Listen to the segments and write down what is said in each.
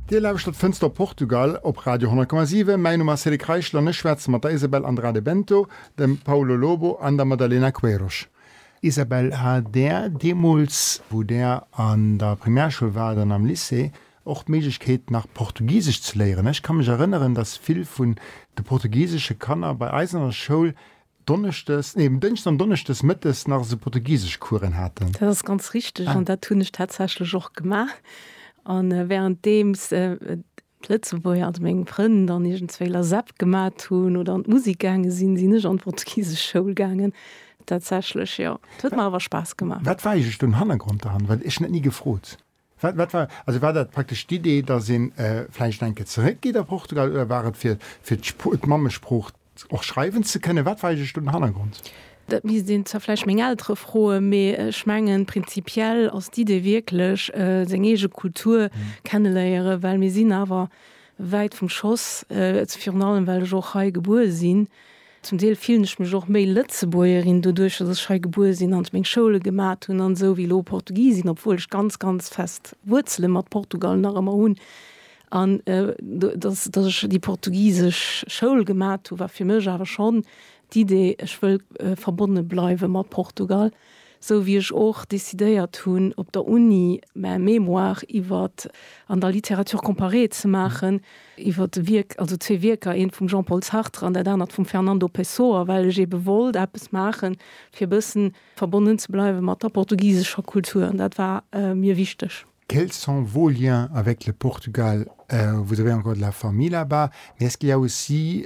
Dir lauschtert Fënster op Portugal op Radio 10,7. Mäin Numm ass Cédric Reichel an ech schwätze mat der Isabel Andrade Bento, dem Paulo Lobo an der Madalena Queiroz. Isabel, hat Där deemools, wou Där an der Primärschoul waart an am Lycée, och d'Méiglechkeet nach Portugisesch ze léieren? Ech ka mech erënneren, datt vill vun de portugisesche Kanner bei eis an der Schoul Donneschdes, nee um Dënschden an Donneschdes mëttes nach esou Portugiseschcouren haten. Dat ass ganz richteg an dat hunn ech tatsächlech och gemaach. An währenddeems d'Lëtzebuerger, also meng Frënn, dann iergendzwéi LASEP gemat hunn oder an d'Musik gaange sinn, sinn ech an d'Portugiseschschoul gaangen. Tatsächlech, jo. Et huet mer awer Spaass gemaach. Wat war eegentléch den Hannergrond derhannert? Well ech hunn dat ni gefrot. Wat, wat war, also war dat praktesch d'Idee, dass ee vläicht eng Kéier zeréckgeet a Portugal oder war et fir, fir d'Spr-, d'Mammesprooch och schreiwen ze kënnen? Wat war eigentlech do den Hannergrond? Dat misst een zwar vläicht meng Eltere froen, mee ech mengen, prinzipiell ass d'Idee wierklech, seng eege Kultur kenneléieren, well mir sinn awer wäit vum Schoss, virun allem well ech och hei gebuer sinn. Zum Deel fillen ech mech och méi Lëtzebuergerin doduerch, dass ech hei gebuer sinn an meng Schoule gemat hunn an esou wéi elo Portugisin, obwuel ech ganz, ganz fest Wuerzele mat Portugal nach ëmmer hunn. An dass, dass ech déi portugisesch Schoul gemat hu war fir mech awer schonn d'Idee, ech wëll verbonne bleiwe mat Portugal. Sou wéi ech och decidéiert hunn op der Uni mä Mémoire iwwer an der Littérature comparée ze maachen, iwwer de Wierk, also zwee Wierker, eent vum Jean-Paul Sartre an dat anert vum Fernando Pessoa, well ech eebe wollt eppes maache fir e bëssen verbonnen ze bleiwe mat der portugisescher Kultur an dat war mir wichteg. Quels sont vos liens avec le Portugal? Vous avez encore de la famille là-bas? Mais est-ce qu'il y a aussi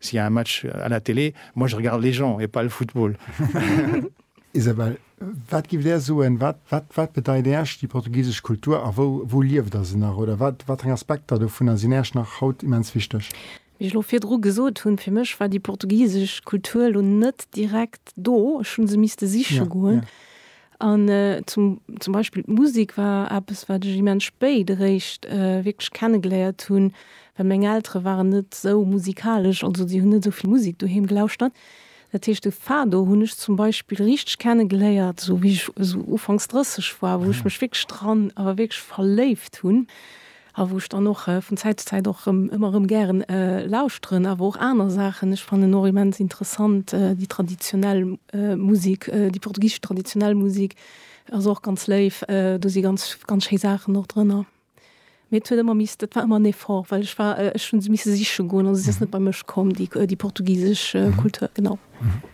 S'il y a un match à la télé, moi je regarde les gens et pas le football. Isabelle, wat giff Där soen, wat, wat, wat bedeit Äerch déi portugisesch Kultur a wou, wou lieft Der se nach oder wat, wat eng Aspekter dovunner sinn Äerch nach haut immens wichteg? Wéi ech lo virdru gesot hunn, fir mech war déi portugisesch Kultur lo net direkt do, ech hu se misste siche goen. An zum, zum Beispill d'Musik war eppes, wat ech immens spéit eréischt wierklech kenne geléiert hunn, well meng Eltere waren net esou musikalesch, also déi hunn net esou vill Musik doheem gelauschtert. Dat heescht de Fado hunn ech zum Beispill richteg kenne geléiert, esou wéi ech esou ufanks 30 war, wou ech mech wierklech dran, awer wierklech verléift hunn. A wou ech dann och vun Zäit zu Zäit och erëm, ëmmer erëm gären lauschteren. Awer och aner Saachen. Ech fannen och immens interessant déi traditionell Musek, déi portugisesch traditionell Musek ass och ganz léif. Do si ganz, ganz schéi Saachen och drënner. Mee et huet ëmmer miss, dat war ëmmer en Effort, well ech war, ech hu se misse siche goen. Also se ass net bei mech komm, déi, déi portugisesch Kultur, genau.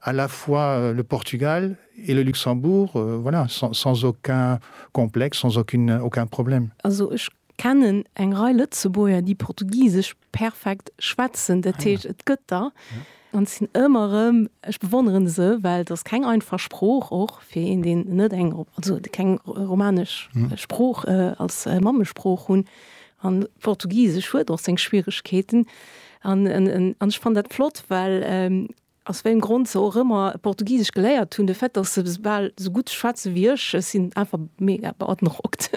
à la fois le Portugal et le Luxembourg, voilà, sans aucun complexe, sans aucune, aucun problème. Also ech kennen eng Rei Lëtzebuerger, déi Portugisesch perfekt schwätzen, dat heescht, et gëtt der. An et sinn ëmmer erëm, ech bewonnere se, well et ass keng einfach Sprooch, och fir een, deen net eng, also keng romanesch Sprooch als Mammesprooch hunn. An Portugisesch huet och seng Schwieregkeeten. An ech fannen dat flott, well Aus wéiem Grond se och ëmmer Portugisesch geléiert hunn, de Fait, dass se bal esou gutt schwätze wéi ech, ech sinn einfach mega beandrockt.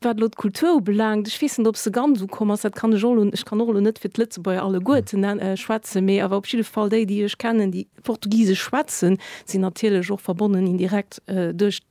Wat elo d'Kultur ubelaangt, ech weess net, ob se ganz ukomm ass, dat kann ech och elo, ech kann och elo net fir d'Lëtzebuerger alleguerten schwätzen, mee awer op jidde Fall déi, déi ech kennen, déi Portugisesch schwätzen, sinn natierlech och verbonnen indirekt duerch.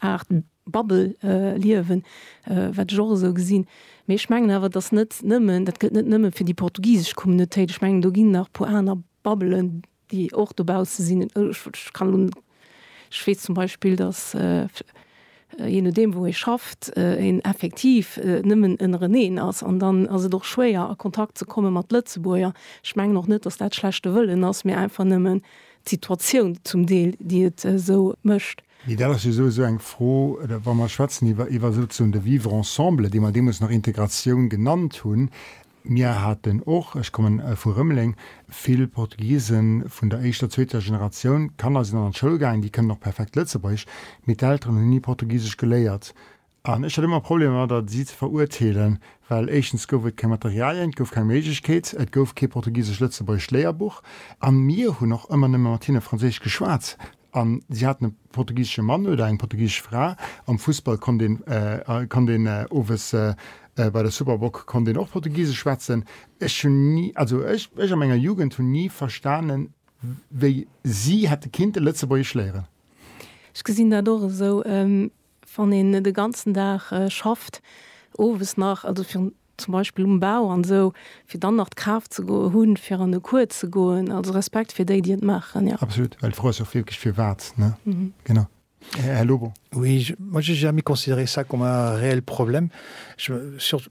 Aart Bubble-Liewen, wat ech och esou gesinn. Mee ech mengen awer, dass net nëmmen, dat gëllt net nëmme fir déi portugisesch Communautéit, ech mengen do ginn nach e puer aner Bubbelen, déi och dobausse sinn. Ech kann elo, ech weess zum Beispill, dass je nodeem wou ee schafft, een effektiv nëmmen ënnereneen ass an dann ass et och schwéier a Kontakt ze komme mat Lëtzebuerger. Ech mengen och net, dass dat schlechte Wëllen ass, mee einfach nëmmen d'Situatioun zum Deel, déi et esou mécht. Mee dat ass jo esou esou eng Fro, wa mer schwätzen iwwer iwwer souzesoen de Vivre ensemble, dee mer deemools nach Integratioun genannt hunn. Mir haten och, ech komme vu Rëmeleng, vill Portugisen vun der éischter, zweeter Generatioun. D'Kanner sinn dann an d'Schoul gaangen, déi kënnen och perfekt Lëtzebuergesch, mee d'Elteren hunn ni Portugisesch geléiert. An ech hat ëmmer Problemer domadder, si ze verurteelen, well éischtens gouf et keng Materialien, et gouf keng Méiglechkeet, et gouf kee portugisesch-lëtzebuergesch Léierbuch a mir hunn och ëmmer nëmme mat hinne franséisch geschwat a si haten e portugisesche Mann oder eng portugisesch Fra. Am Fussball konnt een, konnt een owes bei der Superboc konnt een och portugisesch schwätzen. Ech hunn ni, also ech, ech a menger Jugend hunn ni verstanen, wéi si hätte kinnte lëtzebuergesch léieren. Ech gesinn dat och esou. Wann een de ganzen Dag schafft, owes nach, also fir zum Beispill um Bau an esou, fir dann nach d'Kraaft ze hunn, fir an de Cours ze goen. Also Respekt fir déi, déi et maachen, jo. Absolut, well d'Fro ass jo och wierklech firwat, ne? Genau. Här Lobo. Oui, moi, j'ai jamais considéré ça comme un réel problème. Je, surtout,